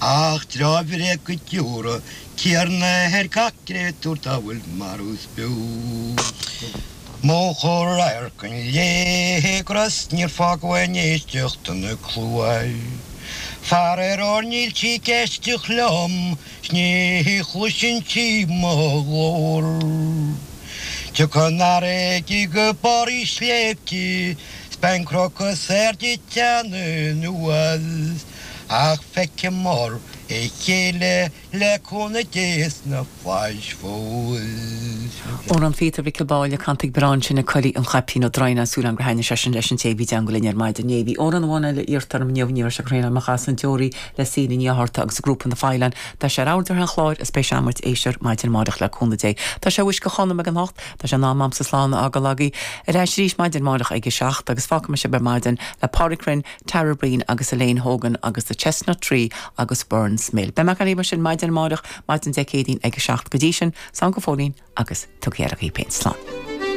Ach trócaire go dtiúra Tiarna ar gach créatúr dá bhfuil marbh is beo. Mo chomhradharc an lae gras níor fágadh aon éisteacht ina cluais. Faraor óir níl sí ag éisteacht liom 's ní chloiseann sí mo ghlór. Tiocfaidh an fharraige go barr na sléibhte 's beidh an cnoc is airde ag titim anuas. Ach feicfidh muid a chéile le cúnamh Dé sna flaithis thuas. Amhrán Pheter Mhicil Báille, canta go breá ansin ag Cóilí an Chaiptín Ó Droighneáin, súil a'm gur thaitnigh sé sin leis an té a bhí i dteagmháil linn ar maidin inné. Bhí amhrán amháin eile iarrtha orm inniu, ní raibh sé go tréan a'm a chasadh, Deoraí le Saoirse Ní Fhátharta agus a grúpa Na Faoileáin. Tá sé ar ord reatha an chláir is beidh sé a'm daoibhse ar maidin amáireach le cúnamh Dé. Tá sé anois ag teannadh ag an hocht, tá sé in am a'msa slán a fhágáil agaibh. Ar ais arís maidin amáireach ag a seacht agus fágfaidh mé sibh ar maidin le Pádraig Rynne, Tara Breen agus Elaine Hogan agus The Chestnut Tree agus Byrne's Mill. Beidh mé ag caint libh mar sin maidin amáireach, maidin Dé Céadaoin ag a seacht. Go dtí sin, slán go fóillín agus tugaigí aire dhaoibh féin, slán.